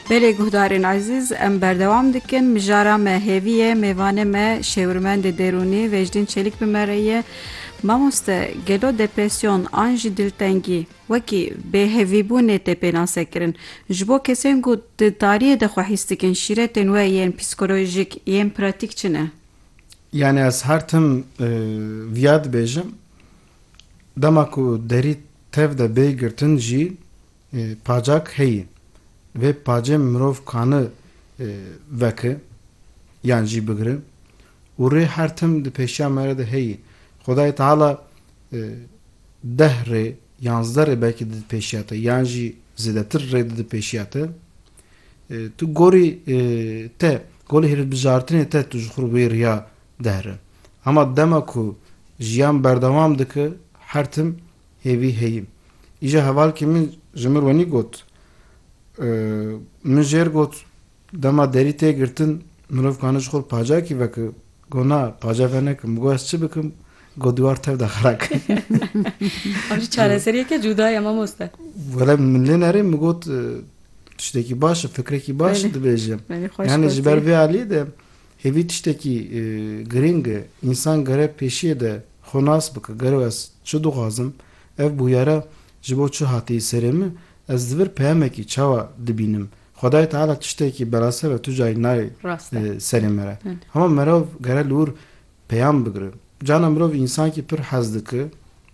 Belê guhdarên ezîz em berdewam dikin mijara me hêvî ye mêvanê me şêwirmendê derûnî Vecdîn Çelîk bi me re ye Mamoste gelo depresyon an jî diltengî wekî bêhevîbûnê tê pênasekirin ji bo kesên ku di tariyê de xwe hîs dikin şîretên we yên psîkolojîk yên pratîk çi ne? Yanî ez her tim viya dibêjim Dema ku derî tev de bê girtin jî pacak heye. Vê pacê mirov kani veke yan jî bigire û rê her tim di pêşiya me re de heye. Xwedayê Teala deh rê, yanzdeh rê belkî di pêşiya te yan jî zêdetir rê di pêşiya te. Tu gorî te, golî hilbijartinê te tu ji xwe wê riya dihre. Hema dema ku jiyan berdewam dike her tim hêvî heye. Îja hevalkê min ji mir wenî got, Min jêr got dema derî tê girtin mirov kane ji xwe bi pacakî veke. Got na paca venekim. Min got ez çi bikim? Got dîwar tev de xera ke. Ev jî çareseriyeke cûda ye mamoste. Wele min lê nerê min got tiştekî baş e fikrekî baş e dibêje. Yanî ji ber vê aliyê de Hêvî tiştekî girîng e. Însan gere pêşiyê de xwe nas bike, gero ez çi dixwazim, ev bûyera ji bo çi hatiye serê min, ez li vir peyamekî çawa dibînim, Xwedayê Teala tiştekî berase ve tu cayî nayê serê me re. Hema merov gere li wir peyam bigire. Carna mirov însankî pir hez dike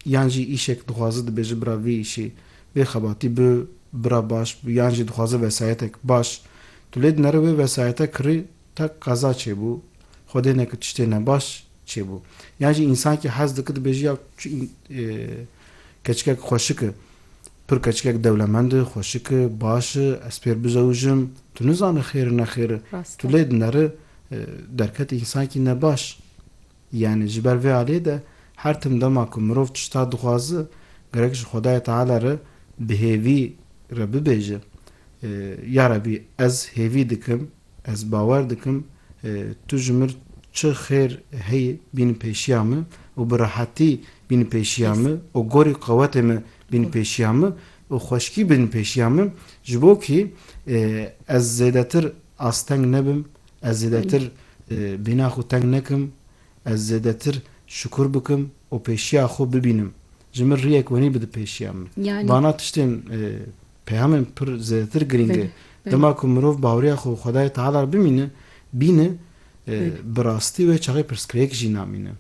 yan jî îşek dixwaze dibêje bira vê îşê vê xebatî bi bira baş bi yan jî dixwaze vesayetek baş tu lê dinere wê vesayete kirê Qek qeza çêbû, Xwedê neke tiştê ne baş çêbû. Yan jî însankî hez dike dibêje ya çi keçikek xweşik i, pir keçikek dewlemend i, xweşik i, baş i, ez pêr bizewujim, tu nizane xêr i nexêr i, tu lê dineri, derket însankî ne baş. Yanî ji ber vê aliyê de her tim dema ku mirov tişta dixwaze gerek ji Xwedayê Teala re bi hêvî re bibêje, Ya Rebî ez hêvî dikim, Ez bawer dikim tu ji mir çi xêr heyî bîn pêşiya min û bi rehetî bîn pêşiya min û gorî qewetê min bîn pêşiya min û xweşkî bîn pêşiya min ji bo kî ez zêdetir asteng nebim, ez zêdetir bêhna xwe teng nekim, ez zêdetir şikur bikim û pêşiya xwe bibînim. Ji mir riyek wenî bide pêşiya min. Bana tiştên Peyamên pir zêdetir girîng e. Dema ku mirov baweriya xwe bi Xwedayê Teala re bimîne, bîne, bi rastî wê çaxê pirsgirêk jî namîne.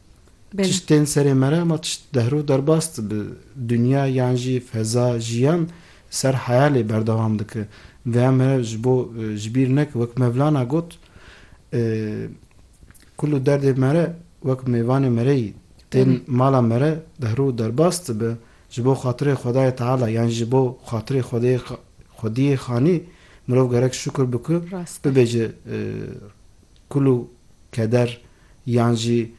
Tişt tên serê me re ma tişt dehr û derbas dibe. Dinya yan jî feza, jiyan ser heyalê berdewam dike. Vêya me ji bo ji bîr neke wek Mevlana got, Kul û derdê me re wek mêvanê me re yî. Tên mala me re dehr û derbas dibe, Ji bo xatirê Xwedayê Teala yan ji bo xatirê xwediyê xanî mirov gerek şukur bi ku bibe ji kul û keder yan jî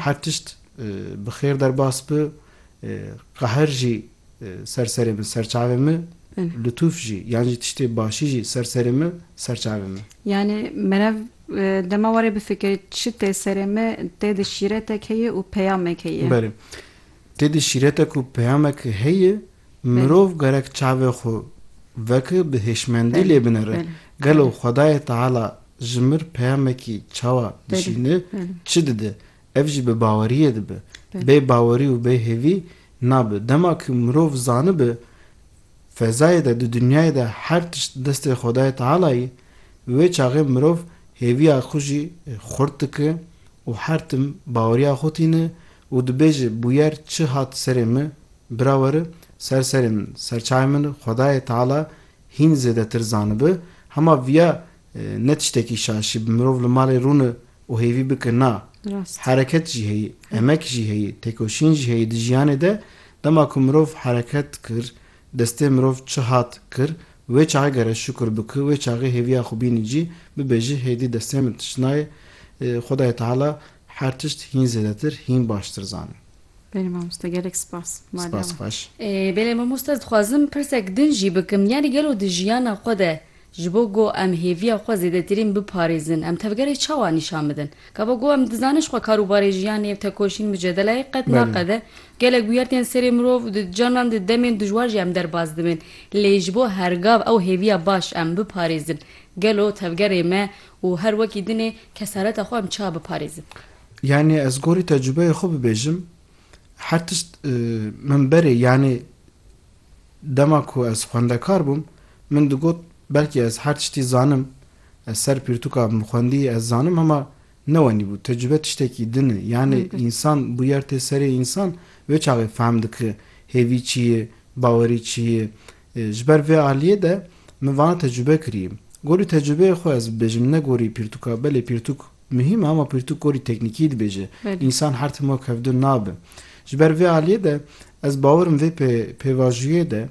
her tişt bi xêr derbas bi, qehr jî ser serê min ser çavê min, litûf jî yan jî tiştê başî jî ser serê min ser çavê min. Yanî merev dema warê bifikirî çi tê serê min tê de şîretek heye û peyamek heye. Belê. Têdî şîretek û peyamek heye, mirov gerek çavê xwe veke bi hêşmendî lê binere. Gelo Xwedayê Teala ji mir peyamekî çawa dişîne, çi dide, ev jî bi baweriyê dibe. Bê bawerî û bê hêvî nabe. Dema ku mirov zanibe fezayê de di dinyayê de her tişt di destê Xwedayê Teala ye, wê çaxê mirov hêviya xwe jî xurt dike û her tim baweriya xwe tîne Û dibêje, Bûyer çi hat serê min, bira were, ser serê min, serçayê min Xwedayê Teala hîn zêdetir zanibi, hema viya ne tiştekî şaşî bi mirov li malê rûni û hêvî bike na. Hereket jî heyî, emek jî heyî, têkoşîn jî heyî di jiyanê de, dema ku mirov hereket kir, destê mirov çi hat kir, wê çaxê gere şukur bike, wê çaxê hêviya xwe bînî cî, bibêje, hêdî destê min tişt nayê, Xwedayê Teala Her tişt hîn zêdetir, hîn baştir zanin. Belê mamoste gelek spas. Spas xweş. Belê mamoste ez dixwazim pirsek din jî bikim yanî gelo di jiyana xwe de ji bo go em hêviya xwe zêdetirîn biparêzin em tevgerê çawa nîşan bidin? Gava go em dizanin jixwe karûbarê jiyanê ev tekoşîn mucedelayê qet naqede gelek bûyer tên serê mirov di canan di demên dijwar jî em derbas dibin lê ji bo hergav ew hêviya baş em biparêzin gelo tevgerê me Û her wekî din ê kesareta xwe em çiha biparêzin? Yanî ez gorî tecrûbeyê xwe bibêjim, her tişt min berê yanî dema ku ez xwendekar bûm min digot belkî ez her tiştî zanim, ez ser pirtûka min xwendî ez zanim hema ne wenîbû. Tecrûbe tiştekî din e. Yanî însan bûyer tê serê însan wê çaxê fehm dike hêvî çi ye, bawerî çi ye, Ji ber vê aliyê de min vana tecrube kirî. Gorî tecrubeyê xwe ez bibêjim ne gorî pirtûka. Belê pirtûk muhîm e ama pirtûk gorî teknîkî dibêje. Însan her tim wek hevdûn nabe. Ji ber vê aliyê de ez bawer im vê pêvajûyê de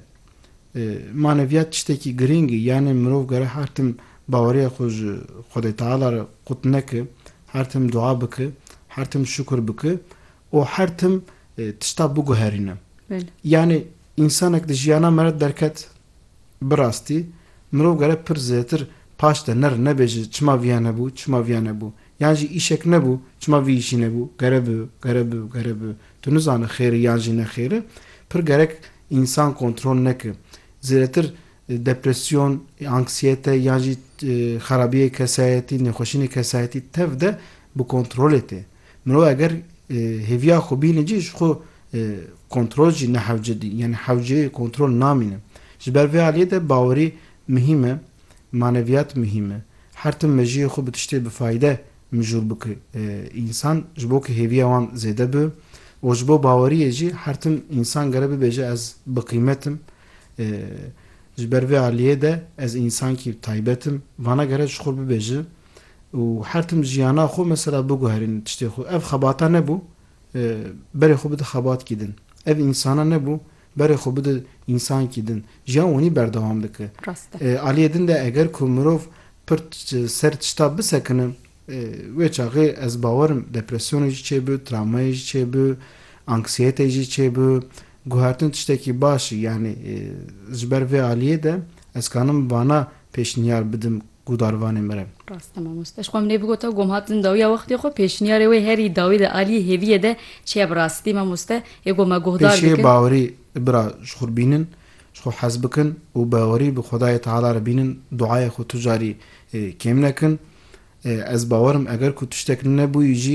maneviyat tiştekî girîng e. Yanê mirov gere her tim baweriya xwe ji Xwedê Teala re qut neke, her tim dua bike, her tim şukur bike û her tim tişta biguherîne. Yanî însanek di jiyana me re derket bi rastî mirov gere pir zêtir paş de nerin nebêje çima viya nebû, çima viya nebû. Yan jî îşek nebû çima vî îşî nebû, gere bi, gere bi, gere bi. Tu nizane xêr e yan jî nexêr e. Pir gerek însan kontrol neke. Zêdetir depresyon, anksiyete yan jî xerabiyê kesayetî, nêxweşînê kesayetî tev de bi kontrolê tê. Mirov eger hêviya xwe bîne cî ji xwe kontrol jî nehewce dî yanî hewce yê kontrol namîne. Ji ber vê aliyê de bawerî muhîm e, maneviyat muhîm e. Her tim mejiyê xwe bi tiştê bi fayde mijûl bike însan ji bo ku hêviya wan zêde bibe û ji bo baweriyê jî her tim însan gere bibêje ez biqîmet im, ji ber vê aliyê de ez însankî taybet im, vana gere ji xwe bibêje. û her tim jiyana xwe mesela biguherînin tiştê xwe. Ev xebata nebû berê xwe bide xebatkî din. Ev însana nebû berê xwe bide însankî din. Jiyan wenî berdewam dike. Aliyê din de eger ku mirov pir ser tişta bisekine wê çaxê ez bawer im depresyonê jî çêbi, travmayê jî çêbi, anksiyetê jî çêbi. Guhertin tiştekî baş e. Yanî ji ber vê aliyê de ez kanim vana pêşniyar bidim. Guhdarvanê min e. Rast e mamoste. Ji xwe min ê bigota gom hat din dawiya wextê xwe pêşniyarê wê herî dawî di aliyê hêviyê de çiye bi rastî mamoste ê gom me guhdar dikin. Pêşiyê bawerî bira ji xwe bînin ji xwe hez bikin û bawerî bi xwedayê teala re bînin duayê xwe tu carî kêm nekin ez bawer im eger ku tiştek nebûyî jî